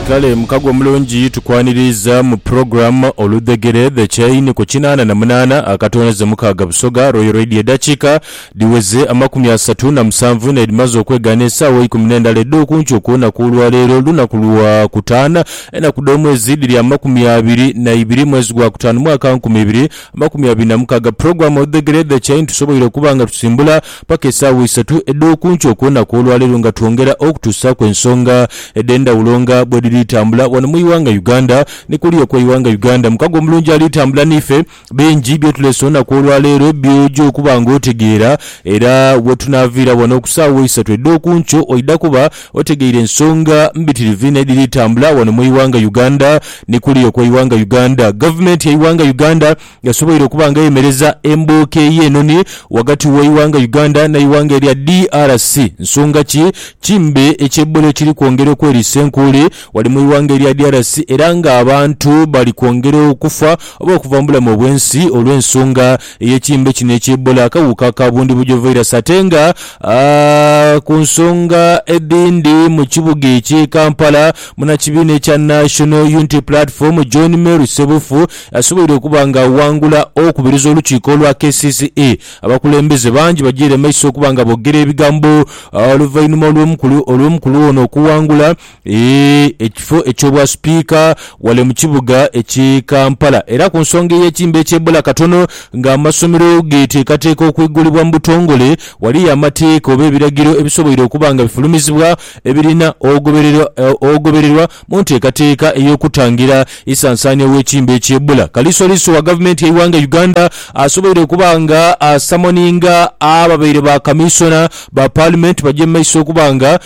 Kale mukago omulungi tukwaniriiza mu program Oludhegere The Chain ku kinaana na munaana akatonaze mukaaga Busoga Royal Radio Edakiika dhiweze amakumi asatu na musanvu n'edhimaze okwegaana esaawa eikumi n'endala edh'okunkyo okw'olunaku olwaleero lunaku lwa kutaana enaku dh'omwezi dhiri amakumi abiri na ibiri mwezi gwa kutaanu mwaka nkumi ibiri amakumi abiri na mukaaga program Oludhegere The Chain tusoboire okuba nga tusimbula paka esaawa isatu edh'oku nkyo ku lunaku olwaleero nga twongera okutuusaaku ensonga edhendhawulo nga bwedhiri tambula wano mu ighanga Uganda. Ni kuliya okwe ighanga Uganda mukago omulungi ali tambula niife, bingi byotulese olunaku olwaleero byoja okuba nga otegeera era wetunaaviira wano oku saawa isatu edh'oku nkyo oidha kuba otegeire ensonga mbitirivu inho edhiri tambula wano mu ighanga Uganda. Ni kuliya okwe ighanga Uganda gavumenti ye ighanga Uganda yasoboire okuba nga ayemereza embooko ey'enoni ghagati w'eighanga Uganda n'eighanga erya DRC. Nsonga ki? Kimbe ekya Ebola ekiri kwongera okweriisa enkuuli ghale mu ighanga erya DRC era nga abantu bali kwongera okufa oba okuva mu bulamu obw'ensi olw'ensonga ey'ekimbe kino ekya Ebola akawuka ka bundibugyo virus ate nga ku nsonga edhindi mu kibuga eky'e Kampala munakibiina ekya National Unity Platform John Mary Ssebufu Asoboire okuba nga aghangula okubiriza olukiiko olwa kcce. Abakulembeze bangi bajiire maiso okuba nga boogera ebigambo oluvainhuma olw'omukulu ono okuwangula ekifo eky'obwa sipiika wale mu kibuga ekye Kampala era ku nsonga ey'ekimbe eky'ebula katono nga amasomero geteekateeka okwigulibwa mu butongole waliyo amateeka oba ebiragiro ebisoboire okuba nga bifulumizibwa ebirina ogobererwa Mu nteekateeka ey'okutangira ensansaania w'ekimbe eky'Ebola, Kalisoliiso wa Gavumenti y'eighanga Uganda asoboire okuba nga asamoninga ababaire ba Kamiisona ba Paalimenti bagye mu maiso okuba nga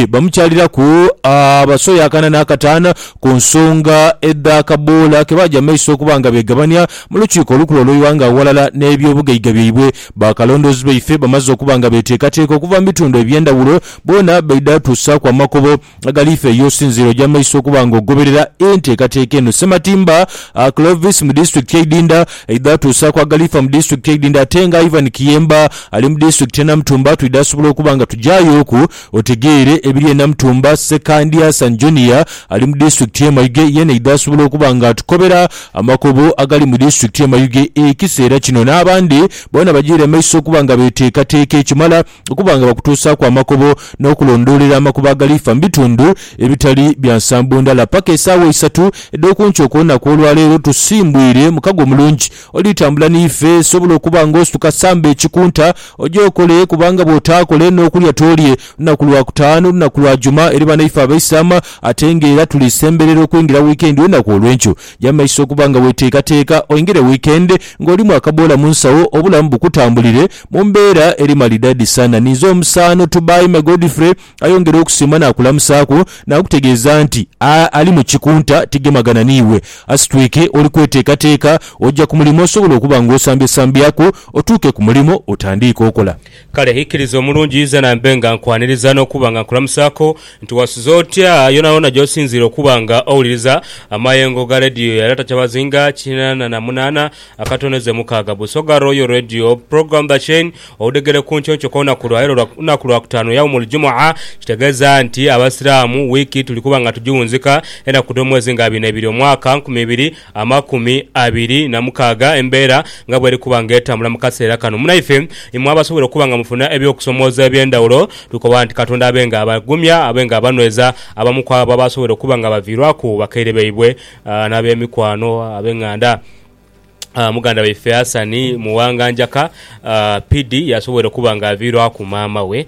bamukyaliraku abasoya akana n'akataano ku nsonga edh'akaboola ke baagya mu maiso okuba nga beegabania mu Lukiiko olukulu olw'eighanga aghalala n'ebyobugaiga byaibwe. Bakalondoozi baife bamaze okuba nga beeteekateeka okuva mu bitundu eby'endhawulo boona baidha tuusaaku amakubo Agaliife ye osinziire oja maiso okuba nga ogoberera enteekateeka eno. Ssematimba Clovis mu disitulikiti ye Idinda aidha atuusaaku Agaliifa mu disitulikiti ye Idinda ate nga Ivan Kiyemba ali mu disitulikiti ye Namutumba twidha asobola okuba nga tujayooku otegeere ebiri e Namutumba. Ssekandi Hassan Junior ali mu disitulikiti ye Mayuge yeena aidha asobola okuba nga atukobera amakubo agali mu disitulikiti ye Mayuge ekiseera kino n'abandi boona bajiire maiso okuba nga beteekateeka ekimala okuba nga bakutuusaaku amakobo n'okulondoolera amakubo agaliifa mu bitundu ebitali bya nsambo ndala. Paka esaawa isatu edh'oku nkyo okw'olunaku olwaleero tusimbwire mukago omulungi. Olitambula n'ife, sobola okuba nga osituka samba ekikunta oje okole kubanga bw'otaakole n'okulya toolye lunaku lwa Kutaanu, lunaku lwa Juma eri banaife Abaisilaama ate ng'era tuli semberera okwingira wiikendi olunaku olw'enkyo. Gya mu maiso okuba nga weeteekateeka oingire wiikendi ng'olimu akaboola mu nsawo, obulamu bukutambulire mu mbeera eri malidadisa. Naninze omusaano Tubaime Godfrey ayongere okusiima naakulamusaaku naakutegeeza nti a ali mu kikunta tigemagana n'iwe. Asitwike oli kweteekateeka oja ku mulimo osobola okuba ng'osambyesambyaku otuuke ku mulimo otandiike okola. Kale ikiriza omulungi ize nambe nga nkwaniriza n'okuba nga nkulamusaako nti wasuze otya yoonayoona gy'osinziira okuba nga owuliriza amayengo ga leediyo ya Data Kyabazinga kinaana na munaana akatondeze mukaaga Busoga Royal Radio Program The Chain Oludegere ku Nkyokyo k'olunaku lwa leero lunaku lwa kutaanu Yaumul Jumua kitegeeza nti Abasiraamu wiiki tuli kuba nga tugiwunzika enaku dh'omwezi nga abiri n'ebiri omwaka nkumi ibiri amakumi abiri na mukaaga embeera nga bweri kuba nga etambula mu kaseera kano. Munaife, imwe abasobola okuba nga mufuna eby'okusomooza eby'endhawulo, tukoba nti Katonda abe nga abagumya, abe nga abanhweza. Abamu ku abo abasobola okuba nga baviirwaku bakaire baibwe n'abemikwano abeng'anda, muganda waife Hassan Muwanganjaka, PD, yasobola okuba nga aviirwaku maama we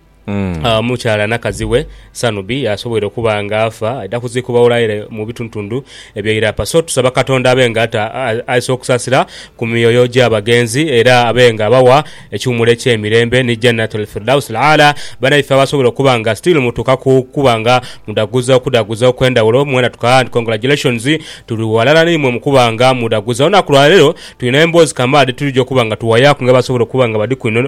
Omukyala nakazi we Sanubi asobweire okuba nga afa aidha kuziikibwa Wolaire mu bitundutundu ebye Irapa. So tusaba Katonda abe nga aisa okusasira ku myoyo gya bagenzi era abe nga abawa ekiwumulo ekye mirembe ni Jannatul Firdaus Al-A'la. Banaife abasobweire okuba nga still mutuuka ku kuba nga mudaguza okudaguza okwendhawulo mwena tukaa and congratulations tuli ghalala naimwe mukuba nga mudaguza olunaku lwaleero. Twina emboozi kamaala dhe twidhi okuba nga tuwayaaku nga basobola okuba nga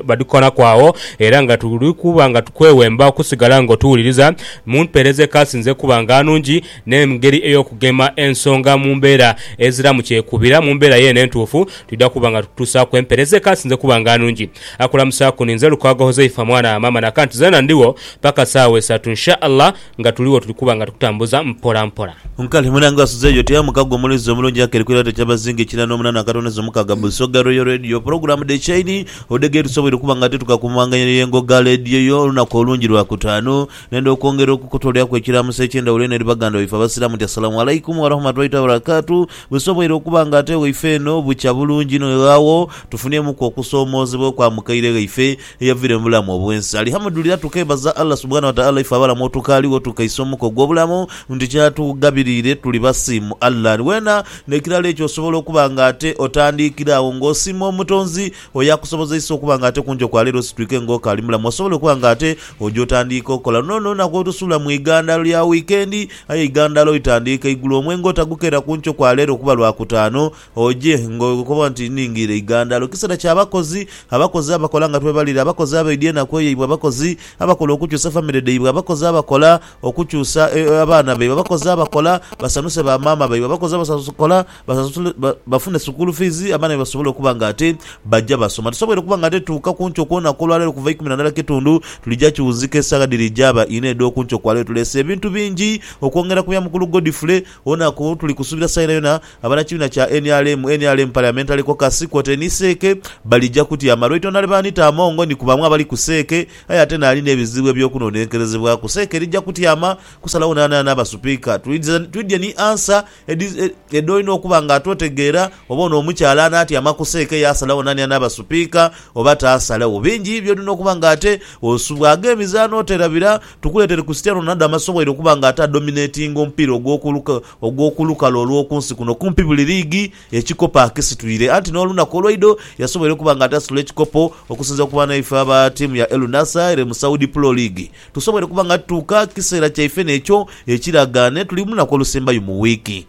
badhikolaku agho era nga tuli kuba nga tukwewemba okusigala ng'otuwuliriza mu mpeereza ekaasinze okuba nga nungi n'engeri ey'okugema ensonga mu mbeera eziramu kyekubira. Mu mbeera yeene entuufu, twidha kuba nga tukutuusaaku empeereza ekaasinze okuba nga nungi. Akulamusaaku ninze Lukwago Huzaifa mwana wa Maama Naka nti zeena ndigho paka saawa isatu Insha Allah. Nga tuli wo tuli kuba nga tukutambuza mpola mpola. Nkale Munange asuze yo tea mukago omulezi omulungi akeri ku irate kyabazinga ekina no munana akatonezo mukaga Busoga Royal Radio program de chaine odege tusoboire okuba nga tituka ku mumanganyiro ye ngo ga lediyo yo lunaku olungi lwa kutanu nenda okwongera okukutoleaku ekiramuso ekye ndawulo eno eri baganda baife abasiramu nti Assalamu Alaikum Warahmatullahi Tabarakatu busoboire okuba nga ate waife eno bukya bulungi inho ghawo tufunemuku okusomozebwa okwa mukaire ghaife eyavira mubulamu obwensi Alihamudulira tukebaza Allah Subhana wataala ife abalamu otukaligho tukaisa omuka ogwobulamu nti kyatugabirire tuli basiimu Allah ni wena nekirala ekyo osobola okuba nga ate otandikira agho nga osiima omutonzi oyakusobozeisa okuba nga ate kunjo kwaleero ositwike nga okaali mulamu osobola okuba nga ate oja otandiika okola luno nolunaku olusuula mu igandalo lya wikendi aye eigandalo litandiika igulo omwenge otagukera kunkyo kwaleero kuba lwakutaano Oje, ng'okoba nti, Nnhingiire eigandalo. Kiseera kya bakozi, abakozi abakola nga twebalire, abakozi abaidya enaku eyaibwe, abakozi abakola okukyusa famire dhaibwe, abakozi abakola okukyusa abaana baibwe, abakozi abakola basanhuse ba maama baibwe, abakozi abakola bafune sukuulu fiizi abaana baibwe basobole okuba nga ate baja basoma. Tusoboire okuba nga ate tuuka ku nkyo kw'olunaku olwaleero kuva ikumi na ndala kitundu, tulija kiwunzika esagha dhiri jaaba inha edh'oku nkyo kwaleero. Tuleese ebintu bingi okwongera ku bya mukulu Godfrey, olunaku tuli kusuubira saha yonayona. Abanakibiina kya nrm, nrm Parliamentary Caucus, kwotaire ni Seeke balija kutyama lwaitwa nali baanita Amongo ni kubamu abali ku Seeke aye ate nali n'ebizibu eby'okunonenkerezebwaku. Seeke erija kutyama kusalagho naanana naaba Supiika. Twidhye ni ansa edhoolina okuba nga ate otegeera oba ono omukyala anaatyama ku Seeke yaasalagho naani anaaba Supiika oba taasalagho. Bingi by'olina okuba nga ate osubwaaga emizaano oterabira. Tukuleetere Christiano Ronaldo amaze obwaire okuba nga ate adominatinga omupiira ogw'oku. ogw'oku lukalu olw'oku nsi kuno kumpi buli liigi ekikopo akisitwire anti n'olunaku olweidho yasoboire okuba nga atasitula ekikopo okusinzira ku banaife aba tiimu ya El Nassr ere mu Saudi Pro League. Tusoboire kuba nga tutuuka kiseera kyaife n'ekyo ekiraga n'etuli mu lunaku olusembayo mu wiiki.